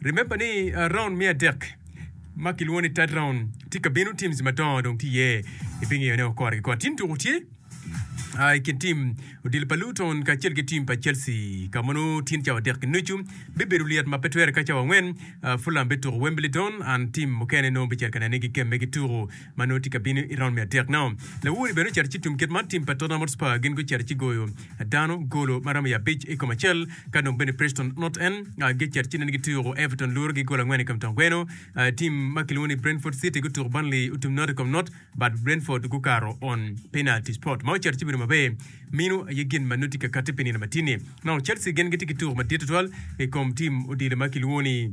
Remember ni round me adek ma kilwongo ni third round tye ka bino teams madongo dong tye iye ibingeyo ne okore ki kore tim tuku tye ah, i kin tim odilo pa Luton kacel ki tim pa Chelsea ka mono tyen cawa adek nucu bibedo lyet ma pe twere ka cawa angwen ah, Fulham bituko Wembley Don and tim mukene nongo bicito ka nene gikemme ki tuku ma nongo tye ka bino i raund me adek. Now, Lawori bene ocito ci tum kit man tim pa Tottenham Hotspur gin gucito ci goyo dano golo ma romo i abic i kom acel ka dong bene Preston North End gicito ci nene gituko Everton luro gi gol angwen i kom tong gweno. Tim ma kilwongo ni Brentford City gutuko Burnley otum not i kom not but Brentford gukato on penalty spot ma ocito ci bedo maber mino aye gin ma nongo tye ka katte pi nino matini. Now, Chelsea gin gitye ki tuko madit tutwal i kom tim odilo ma kilwongo ni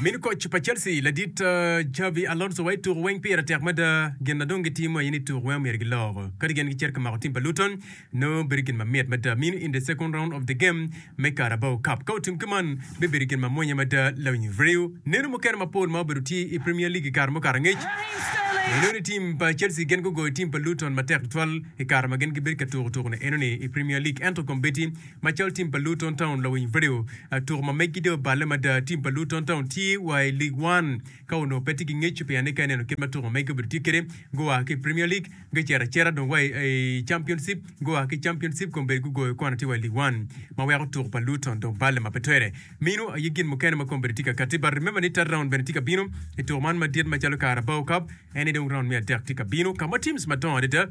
Min koc pa Chelsea ladit Xabi Alonso wa i tuku weng pire tek mada. Gin ma dong gitimo aye ni tuku weng omyero giloko. Kadi gin gicito ka mako tim pa Luton, nongo bedo gin mamit mada mini in the second round of the game me Carabao Cup. Ka otim ki man, bibedo gin ma mwonya mada. Lawiny Ryu, Neno mukene mapol ma obedo tye i Premier League i kare mukato angec, enoni ni tim pa Chelsea gin gugoyo tim pa Luton matek tutwal i kare ma gin gibedo ka tuku tuku-ni enoni i Premier League. Ento kombeddi Macalo tim pa Luton Town, lawiny Video, Tuko ma megi dong oballe mada. Tim pa Luton Town tye wa i League One ka onongo pe tye ki ngeco pien ni ka ineno kit ma tuko magi obedo tye kwede, gua ki i Premier League gucito acita dong wa i Championship, gua ki i Championship kong bene gugoyo kwan atir wa i League One ma weko tuko pa Luton dong balle ma pe twere. Meno aye gin mukene ma kong bene tye ka katti but remember ni third round bene tye ka bino i tuko man madit macalo Carabao Cup, ene dong round me adek tye ka bino ka ma teams madongo adada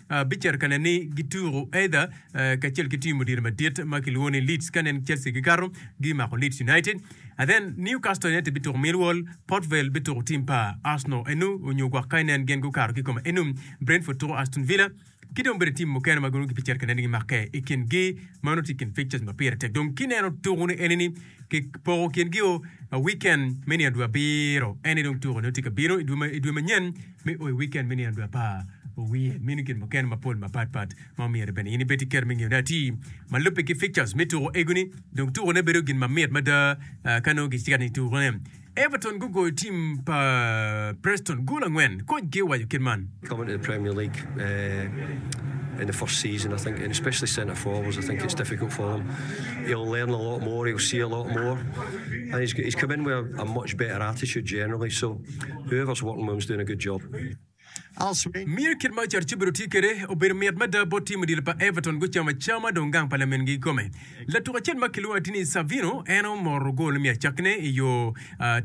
Bicito kane ni gituko Adha kacel ki tim odiro madit ma kilwongo ni Leeds. Ka nen Chelsea gikato, gimako Leeds United. Adhen, Newcastle United bituko Millwall, Port Vale bituko tim pa Arsenal enu onyo gwak ka inen gen gukato ki kome enu. Brentford tuko Aston Villa ki dong bene tim mukene ma giromo bicito kane ni gimakke. I kingi ma nongo tye i kin fixtures ma pire tek dong kineno tuko ni eni ni kipoko kingi o weekend me nino dwe abiro. Ene dong tuko nongo tye ka bino i dwe manyen. Me o i wikend me nino dwe apar owiye, mino gin mukene mapol mapat pat ma omyero bene in ibed ki kero me ngeyone atir. Ma lubbe ki fixtures me tuko egoni, dong tukone bedo gin mamit mada ka nongo gitye ka nino tukone. Everton gugoyo tim pa Preston gol angwen, koc gi owaco kit man. Coming to the Premier League in the first season I think and especially centre forwards I think it's difficult for him. He'll learn a lot more, he'll see a lot more and he's he's come in with a much better attitude generally so. Miyo kit ma Ocato Cubido tye kwede obedo mit mada bot tim odilo pa Everton gucamo acama dong gang pa lamingi kikome. Latuk acel ma kilwongo atir ni Savino en omoto gol me acakkine i yo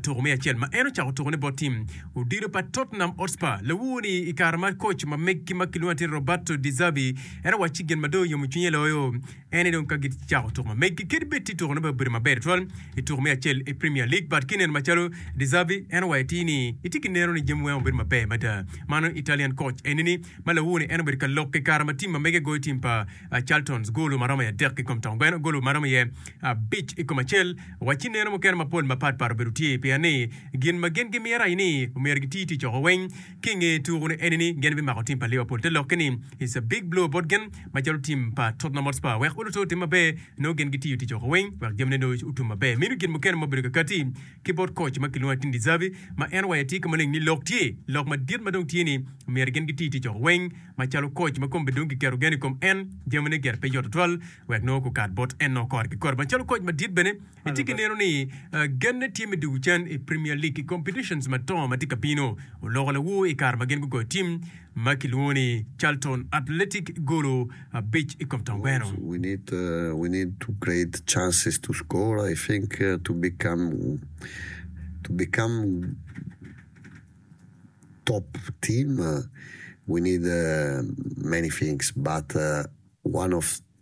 tuko me acel ma en ocako tukone bot tim odilo pa Tottenham Hotspur lawowo ni i kare ma koc ma meggi ma kilwongo atir ni Roberto De Zerbi en owacci gin ma dong oyomo cwinye loyo ene dong ka gicako tuko ma megi kit bed ti tuko ne bene obedo maber twal i tuko me acel i Premier League but ki neno macalo De Zerbi en owayo ti ni itye ki neno ni jami weng obedo maber mada mano Italian coach eni ni ma lawone en obedo ka lokke kare ma tim ma mege goyo tim pa ah, Charltons golo ma romo i adek ki kom Tongwen golo ma romo iye abic i kom acel wa ci neno mukene mapol mapat pat obedo tye pien ni gin ma gin gimyero aye ni omyero giti tic oko weng ki i nge tuku-ni eni ni gin bimako tim pa Liverpool te lokke ni It's a big blow bot gin macalo tim pa Tottenham Hotspur wek olutte otim maber nongo gin gitiyo tic woko weng wek jamine nongo otum maber. Meno gin mukene ma obedo kakati ki bot koc ma kilwongo Atin De Zerbi ma en waye tye ki maleng ni lok tye lok madit ma dong tye ni myero gin giti tic woko weng macalo koc ma kombe dong kiketo gen i kom en jamine gire pe yot tutwal wek nongo gukat bot en nongo kore ki kore macalo koc madit bene Itye ki neno ni genne tye me dwogo can i Premier League i competitions madongo ma tye ka bino. Oloko lawo i kare ma gin gugoyo tim ma kilwongo ni Charlton Athletic golo abic i kom tongweno.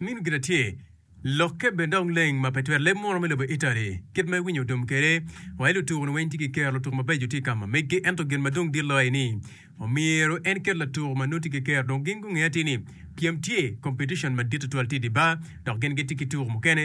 Min gire tye lokke bene dong leng ma pe twero leb munu me lobo Italy kit ma iwinyo otum kede wa i lutuku ni weng tye ki kero lutuku mabeco tye kama megi ento gin madong dit loyo ni omyero en ket latuku ma nongo tye ki kero dong gin gungeyo atir ni pyem tye competition madit tutwal tye idibar dok gin gitye ki tuku mukene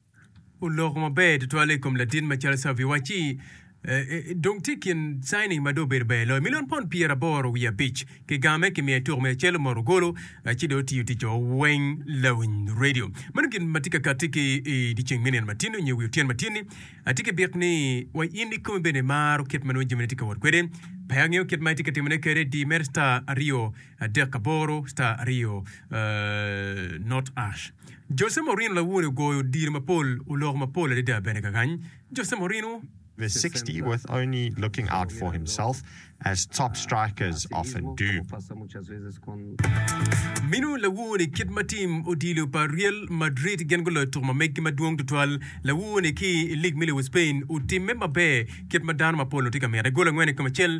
oloko maber tutwale i kom latin macalo Xavi wacci, Dong tye i kin signing ma dong obedo ber loyo, milion pond pyeraboro wiye abic. Kigame kimiyo i tuko me acel omoto golo, ci dong otiyo ticce weng lawiny redio. Meno gin ma tye ka katti ki i dyeceng me nino matino nyo wi otyeno matyen-ni. Atye ki byek ni wa in ikomi bene imaro kit ma nongo jamine tye ka wot kwede. Pe angeyo kit ma itye ka timone kede, di mere star aryo adek aboro star aryo not ash. Jose Mourinho lawode ogoyo odiro mapol, oloko mapol adada bene kakany. Jose Mourinho. the sixty with only looking out for himself as top strikers often do. Minu lawode kit ma tim odilo pa Real Madrid gin guloyo tuko ma megi madwong tutwal. Lawode ki i lig me lobo Spain otimme maber kit ma dano mapol-lu tye ka mite. Gol angwen i kom acel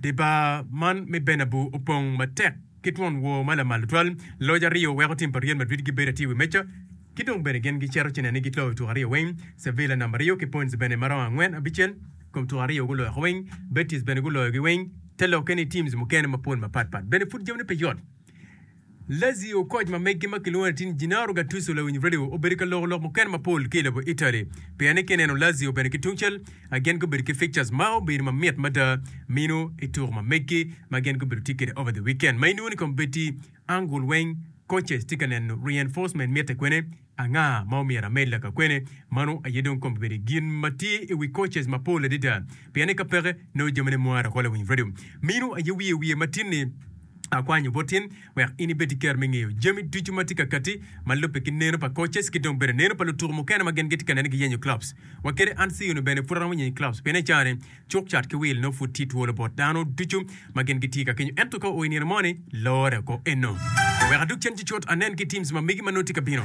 Dye bar man me Bernabu opong matek ki twon wor ma lamal tutwal. Loc aryo weko tim pa Real Madrid gibedo atir i wi meja, ki dong bene gin gicito ci neno ni giloyo tuko aryo weng. Sevilla namba aryo ki points bene ma romo angwen abicel kom tuko aryo guloyoko weng. Betis bene guloyogi weng. Te lokke ni teams mukene mapol mapatpat bene pud jamine pe yot. Lazio koc ma megi ma kilwongo latin Gennaro Gattuso lawiny redio obedo ka loko lok mukene mapol ki i lobo Italy pien ni ka ineno Lazio bene ki tungcel a gin gubedo ki fixtures ma obedo ma mit mada mino i tuko ma megi ma gin gubedo tye kwede over the weekend ma inongo ni kombeddi angul weng coaches tye ka neno reinforcement mitte kwene Anga ma omyero amed laka kwene? Mano aye dong kono bibedo gin ma tye i wi coaches mapol adada, pien ni ka peke, nongo jamine mo ara kole winyo redio. Mino aye wiye wiye matin-ni, Akwanyo bot in wek in ibed ki ker me ngeyo jami ducu ma tye ka katti ma lubbe ki neno pa coaches ki dong bene neno pa lutuku mukene ma gin gitye ka neno giyenyo clubs wa kede. An Siono bene pud aromo yenyo clubs pien ecaa ni, Cuk cat ki wil nongo pud tye twolo bot dano ducu ma gin gitye ka kenyo. Ento ka o i nino moni, lore oko eno. Wek adog cen cucut anen ki teams ma megi ma nongo tye ka bino.